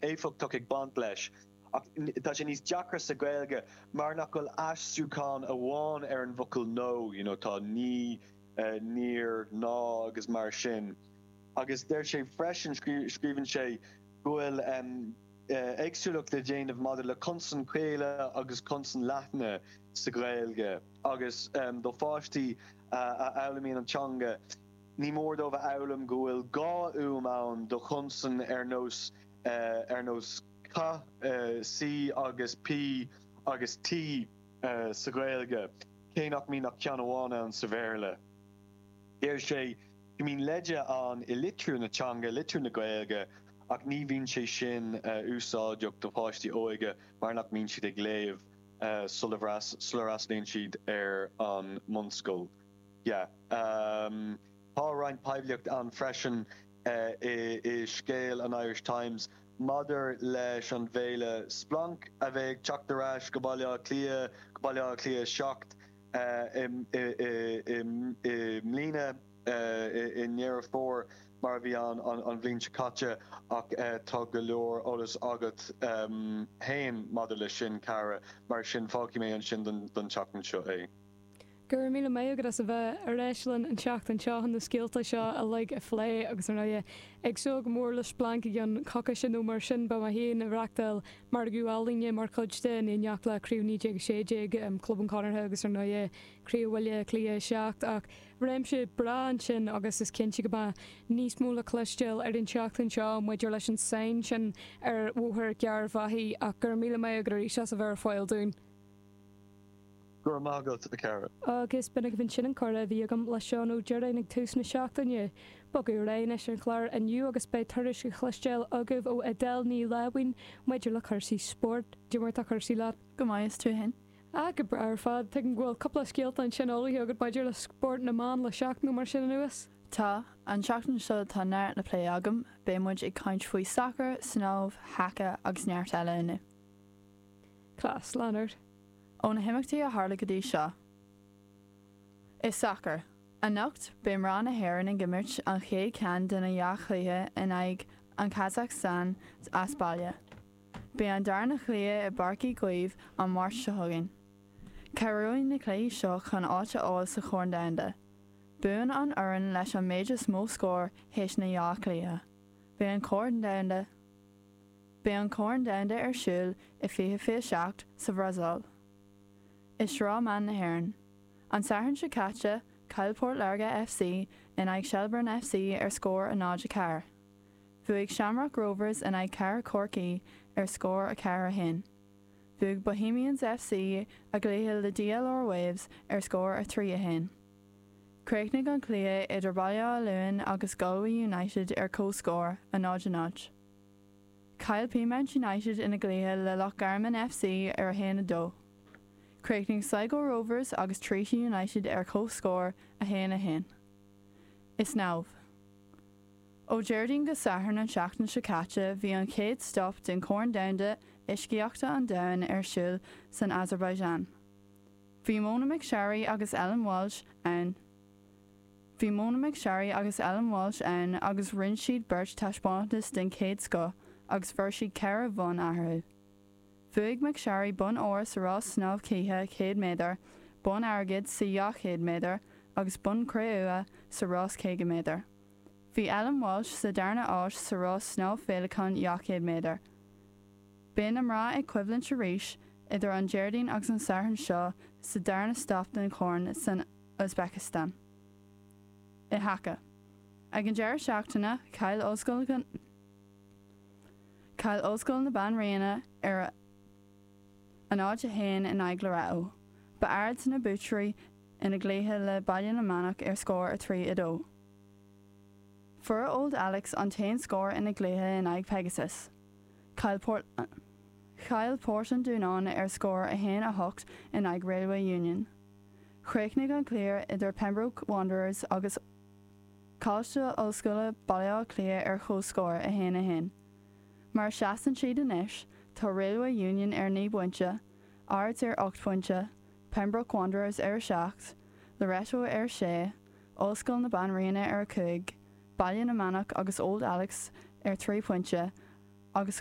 éifeachtach ag baint leis ach tá sé níos deacra sa Ghaeilge mar nach bhfuil aistriúchán amháin ar an bhfocal no, you know tá ní, níor, ná agus mar sin agus deir sé freisin, scríobhann sé, go bhfuil éagsúlacht le déanamh maidir le consain chaola agus consain leathna sa Ghaeilge agus do pháistí a fhoghlaimíonn an teanga. Ní mór dóibh a fhoghlaim go bhfuil dhá fhuaim ann do chonsain ar nós ar nós C, C agus P agus T sa Ghaeilge, cé nach mbíonn ach ceann amháin ann sa Bhéarla. Deir sé go mbíonn leide ann i litriú na teanga, litriú na Gaeilge, ach ní bhíonn sé sin úsáideach do pháistí óga mar nach mbíonn siad ag léamh sula bhfreastlaíonn siad ar an mbunscoil. Yeah. Tá roinnt poiblíocht ann freisin i scéal an Irish Times maidir leis an bhféile Splanc a bheidh ag teacht ar ais go Baile Átha Cliath, go Baile Átha Cliath 7 i mbliana, i nDeireadh Fómhair mar a bhí ann an bhliain seo caite ach tá go leor eolas agat féin maidir leis sin, a Chiara, mar sin fágfaidh mé ansin don tseachtain seo é. Go raibh míle maith agat as a bheith ar ais linn an tseachtain seo chun na scéalta seo uilig a phlé agus ar ndóigh, ag súil go mór le Splanc i gceann coicise nó mar sin. Beidh mé féin ag reachtáil margadh ealaíne mar chuid de, in éineacht le Craobh 1916 Club an Chonartha agus ar ndóigh Craobh Bhaile Átha Cliath 7, ach réimse breá ansin agus is cinnte go mbeidh níos mó le cloisteáil ar an tseachtain seo maidir leis an sainn sin ar Bhóthar Gearr Bhaile ach go raibh míle maith agat arís as a bheith ar fáil dúinn. Go raibh maith agat, a Chiara. Agus b'in agaibh ansin an comhrá a bhí agam le Seán Ó Direáin ag tús na seachtaine. Ag bogadh ar aghaidh anois ar an chlár inniu agus beidh tuairisc le cloisteáil agaibh ó Edel Ní Láimhín maidir le cúrsaí spóirt. Cén chaoi mar atá cúrsaí leat? Go maith, is tú fhéin? Ah, go breá ar fad. Tuigim go bhfuil cúpla scéalta ansin eolaithe agat maidir le spórt na mban le seachtain nó mar sin anuas? Tá. An tseachtain seo tá neart le plé agam, beidh muid ag caint faoi sacar, snámh, haca agus neart eile inniu. Class, lean ort. Ó na himeachtaí a tharla go dtí seo i sacar anocht beidh mná na hÉireann ag imirt an chéad cheann de na dhá chluiche in aghaidh an Kazakhstan as baile. Beidh an darna chluiche i bPáirc Uí Chaoimh an Máirt seo chugainn. Cabhróidh na cluichí seo chun áit a fháil sa Chorn Domhanda. Buann an fhoireann leis an méid is mó scór théis na dhá chluiche. Beidh an Corn Domhanda. Beidh an Corn Domhanda ar siúl i 2027 sa Bhrasaíl. I Sraith Mná na hÉireann. An Satharn seo caite, chaill Port Láirge FC in aghaidh Shelbourne FC ar scór a 0, 4. Bhuaigh Shamrock Rovers in aghaidh Cathair Chorcaí ar scór 4, 1. Bhuaigh Bohemians FC a gcluiche le DLR Waves ar scór 3, 1. Chríochnaigh an cluiche idir Baile Átha Luain agus Galway United ar chomhscór, a 0, 0. Chaill Peamount United ina gcluiche le Loch Garman FC ar 1, 2. Chríochnaigh Sligo Rovers agus Treaty United ar chomhscór, 1, 1. Is snámh. Ó Déardaoin go Satharn an tseachtain seo caite bhí an chéad stop den Chorn Domhanda Uiscíochta an Domhain ar siúl san Azerbaijan. Bhí Mona McSharry agus Ellen Walshe ann. Bhí Mona McSharry agus Ellen Walshe ann agus rinne siad beirt taispeántas den chéad scoth agus fuair siad ceithre bhonn eatharthu. Bhuaigh McSharry bonn óir sa rás snámh cíche 100 méadar, bonn airgid sa 200 méadar agus bonn cré-umha sa rás 50 méadar. Bhí Ellen Walshe sa darna háit sa rás snámh féileacáin 200 méadar. Beidh na mná ag coimhlint arís idir an Déardaoin agus an Satharn seo sa darna stop den Chorn san Uzbekistan. I haca. Ag an deireadh seachtaine, chaill Ollscoil na. Chaill Ollscoil na Banríona ar a a náid a haon in aghaidh Loreto. Ba Ards na buaiteoirí ina gcluiche le Baile na Manach ar scór 3, 2. Fuair Old Alex an t-aon scór ina gcluiche in aghaidh Pegasus. Chaill Port Chaill Port an Dúnáin ar scór 1, 8 in aghaidh Railway Union. Chríochnaigh an cluiche idir Pembroke Wanderers agus Coláiste Ollscoile Baile Átha Cliath ar chomhscór, 1, 1. Mar a seasann siad anois, tá Railway Union ar naoi bpointe, Ards ar ocht phointe, Pembroke Wanderers ar a seacht, Loreto ar a sé, Ollscoil na Banríona ar a cúig, Baile na Manach agus Old Alex ar trí phointe agus